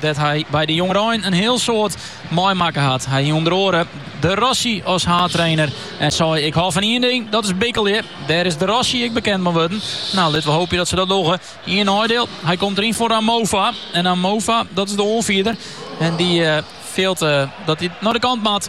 dêr't hy by de jongerein in hiel soad meimakke hat. Hy hie ûnder oare De Rossi as haadtrainer en sei, Ik hâld fan ien ding, dat is bikkelje. Dêr is De Rossi ek bekend mei wurden. No, litte we hoopje dat se dat dogge. Ien neidiel, hy komt deryn foar Amofa. En Amofa, dat is de oanfierder en dy fielt dat hy nei de kant moat.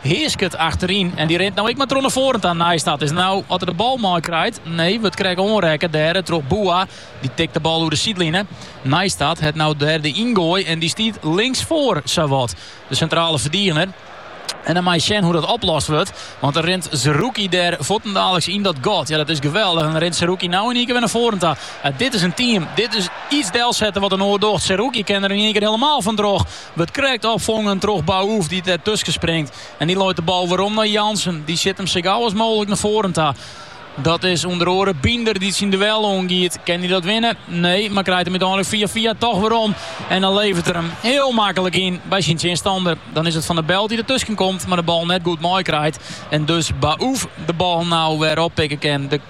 Heasket achteryn en dy rint no ek mar troch nei foaren ta. Nijstad it is no oft er de bal meikrijt. Nee, wurdt krekt oanrekke dêre troch Boua. Dy tikt de bal oer de sydline. Nijstad hat no dêr de yngoai en dy stiet linksfoar sawat de sintrale ferdigener. En dan mei je sjen hoe dat oplost wurdt. Want dan rint Zerrouki dêr fuortendaliks yn dat gat. Ja, dat is geweldich. En dan rint Zerrouki no yn ien kear wer nei foaren ta. Dit is in team. Dit is iets delsette wat in oar docht. Zerrouki kin der yn ien kear hielemaal fantroch. Wurdt krekt opfongen troch Baouf dy't der tusken springt. En dy leit de bal werom nei Jansen. Dy sjit him sa gau as mooglik nei foaren ta. Dat is ûnder oare Binder dy't syn duel oangiet. Kin hy dat winne? Nee, mar krijt him úteinlik fia fia toch werom. En dan leveret er him hiel maklik yn by syn tsjinstanner. Dan is it Van den Belt dy't der tusken komt, mar de bal net goed meikrijt. En dus Baouf de bal no wer oppikke kin.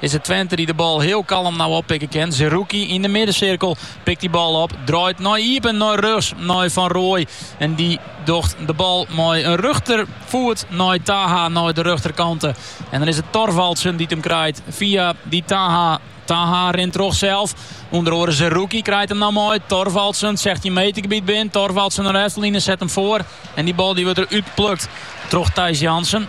Is it Twente dy't de bal hiel kalm no oppikke kin. Zerrouki yn de middensirkel pikt dy bal op, draait nei iepen nei rjochts nei Van Rooij en dy docht de bal mei in rjochterfoet nei Taha nei de rjochterkante. En dan is it Thorvaldsen dy't him krijt fia dy Taha. Taha rint troch sels, ûnder oare Zerrouki krijt him no mei. Thorvaldsen, 16 metergebiet binnen, Thorvaldsen nei de efterline, set him foar en dy bal dy wurdt der útplukt troch Thijs Jansen.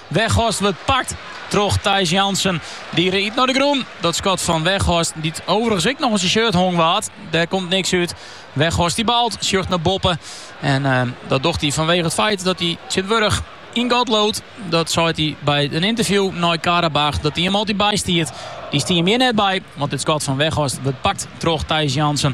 Weghorst wurdt pakt troch Thijs Jansen. Dy giet nei de grûn. Dat skot fan Weghorst, dy't overigens ek noch oan syn shirt hongen waard, dêr komt niks út. Weghorst die baalt, sjocht nei boppe. En eh, dat docht hy fanwege it feit dat hy tsjintwurdich yn God leaut. Dat sei hy by in ynterview nei Qarabağ, dat hy him altyd bystiet. Dy stie him hjir net by, want dit skot fan Weghorst wurdt pakt troch Thijs Jansen.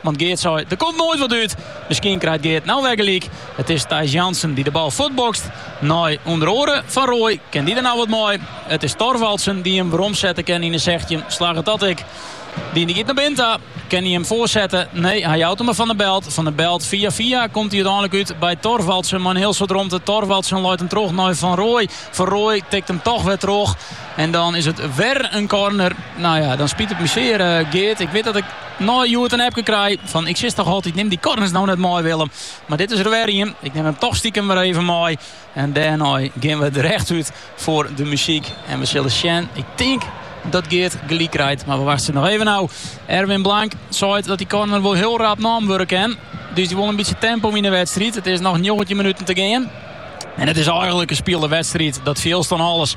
Want Geert sei, der komt noait wat út. Miskien krijt Geert nou wer gelyk. It is Thijs Jansen dy't de bal fuortbokst. Nei ûnder oare Van Rooij kin dy der no wat mei. It is Thorvaldsen dy't him weromsette kin yn 'e sechstjin. Slagget dat ek. Diende giet nei binnen ta. Kin hy him foarsette? Nee, hy jout him mar Van den Belt. Van den Belt fia fia komt hy úteinlik út by Thorvaldsen. Mei in hiel soad romte. Thorvaldsen leit him troch nei Van Rooij. Van Rooij tikt him toch wer troch. En dan is it wer in corner. Nou ja, dan spyt it my sear Geert. Ik wit dat ik. Nei hjoed in appke krij fan ik sis toch altyd nim dy korners no net mei Willem. Mar dit is der wer ien. Ik nim him toch stikem wer even mei. En dêrnei gean we der echt út foar de muzyk. En we sille sjen. Ik tink dat Geert gelyk krijt, mar we wachtsje noch even nou. Erwin Blank seit dat dy corner wol hiel rap nommen wurde kin. Dus dy wol in bytsje tempo yn de wedstriid. It is noch 19 minuten te gean. En it is eigenlik in spile wedstriid. Dat fielst oan alles.